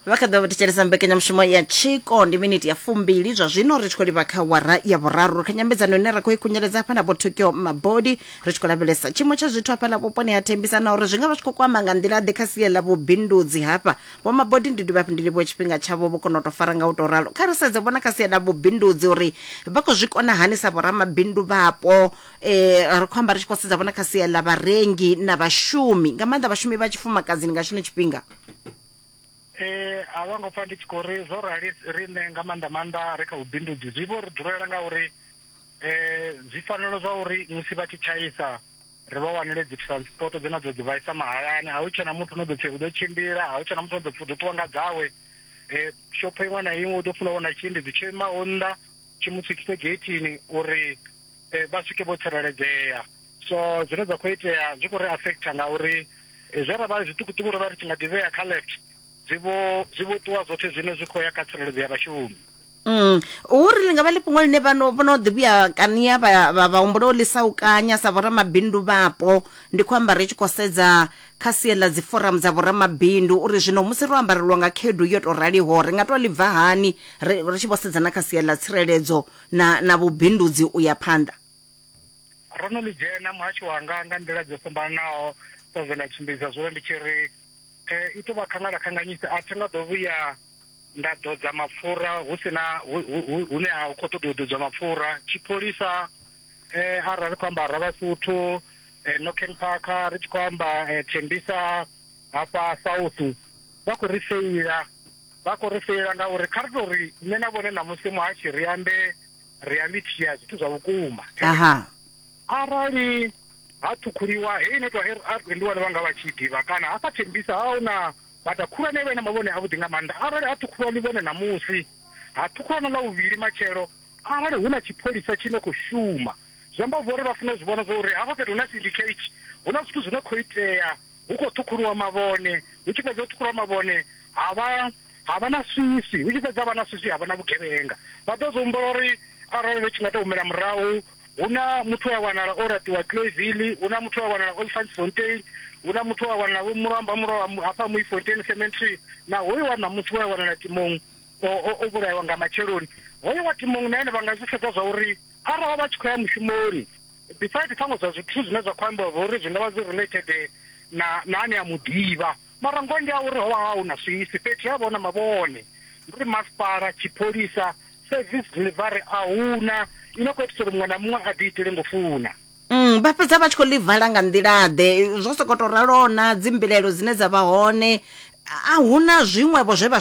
vha kha ḓo vha thetshelesa mbekanyamushumo ya tshiko ndi miniti ya fumbili zwa zwino ri tshi khou livha kha wara ya vhuraru kha nyambedzano ine ra khou i khunyeledza hafha na vho tokyo mabodi ri tshi khou lavhelesa tshiimo tsha zwithu hafha na vhuponi ha thembisa na uri zwi nga vha zwi khou kwama nga nḓila ḓe kha sie ḽa vhubindudzi hafha vho mabodi ndi dovha hafhu ndi livhuwe tshifhinga tshavho vho kona u tou fara nga u tou ralo kha ri sedze vhona kha sie ḽa vhubindudzi uri vha khou zwi kona hani sa vhoramabindu vhapo eh, ri khou amba ri tshi khou sedza vhona kha sia ḽa vharengi na vhashumi nga maanḓa vhashumi vha tshifumakadzini nga tshino tshifhinga Eh, a vha ngo pfa ndi tshi khou ri zwo rali riṋe nga maanḓa maanḓa ri kha vhubindudzi zwi vho ri dulela nga uri eh zwi fanela zwa uri musi vha tshi tshaisa ri vha wanele dzi transport dzine dzo dzi vhaisa mahayani a hu tshena muthu no ḓo pfi u ḓo tshimbila a hu tshena muthu no ḓo pfi u ḓo ṱuwa nga dzawe eh shopho iṅwe na iṅwe u ḓo funa wana tshiendedzi tsho imaho nnḓa tshi mu swikise geithini uri vha swike vho tsireledzea so zwine zwa khou itea zwi khou ri affecta ngauri zwe ra vha zwiṱukuṱuku ro vha ri tshi nga ḓivhea kha left zwi vho zwi vho ṱuwa zwoṱhe zwino zwi khou ya kha tsireledzo ya vhashumi Mm. uri li nga vha ḽi fhungo ḽine vhano vhono ḓi vhuya kania vha vha- vha humbula u ḽisa u kanya sa vhoramabindu vhapo ndi khou amba ri tshi khou sedza kha sie ḽa dzi forum dza vhoramabindu uri zwino musi ro ambarelwa nga khaedu yo tou raliho ri nga tou ḽi bva hani ri ri tshi vho sedza na kha sie ḽa tsireledzo na, na vhubindudzi u ya phanḓa. Ro no ḽi dzhena muhasho wanga nga nḓila dzo fhambananaho dza zwe nda tshimbidza zwone ndi tshi ri eh, i tou vha khangalakhanganyisa a thi nga ḓo vhuya nda ḓodza mapfura hu si na hune ha khou ṱoḓa u ḓodzwa mapfura tshipholisa um arali ri khou amba ra vhasuthu um eh, noken park ri tshi khou amba um thembisa hafha south vha khou ri feila Vha khou ri feila ngauri kha ri tou ri nṋe na vhone ṋamusi muhashi ri ambe ri a ḽitshia zwithu zwa vhukuma. Aha. Arali ha ṱhukhuliwa heyi netwa RRB ndi vhone vha nga vha tshi ḓivha kana hafha Thembisa ha hu na bada khulwane vhe na mavhone avhuḓi nga maanḓa. Arali ha ṱhukhuliwa ḽivhone ṋamusi, ha ṱhukhuliwa na ḽa vhuvhili matshelo, arali hu na tshipholisa tshi no khou shuma, zwi amba zwo ri vha funa u zwi vhona zwa uri hafha fhethu hu na syndicate, hu na zwithu zwi no khou itea hu khou ṱhukhuliwa mavhone, hu tshi fhedza u ṱhukhuliwa mavhone ha vha ha vha na swiswi, hu tshi fhedza ha vha na swiswi ha vha na vhugevhenga. Vha ḓo zwi humbula uri arali ri tshi nga tou humela murahu, hu na muthu we a wanala o laṱiwa Cloisville, hu na muthu we a wanala Olifantsfontein, hu na muthu we a wanala Vho Mulomba Mulwa hafha Mooifontein Cemetery, na hoyu wa ṋamusi we a wanala Timong o o o vhulaiwa nga matsheloni. Hoyu wa Timong na ene vha nga zwi sedza zwa uri arali vha tshi khou ya mushumoni Beside ṱhaṅwe zwa zwithu zwine zwa kho ambiwa zwa uri zwi ngavha zwi related na na ane a muḓivha mara ngoho ndi ya uri hovha ha huna swisi fhethu he havha huna mavhone ndi uri masipala, tshipholisa, service delivery ahuna i no kho itisa uri muṅwe na muṅwe a ḓi itele ngo funa. Mm, vha fhedza vha tshi khou ḽi vala nga nḓila ḓe zwo sokou tou ralo na dzimbilaelo dzine dza vha hone a huna zwiṅwevho zwe vha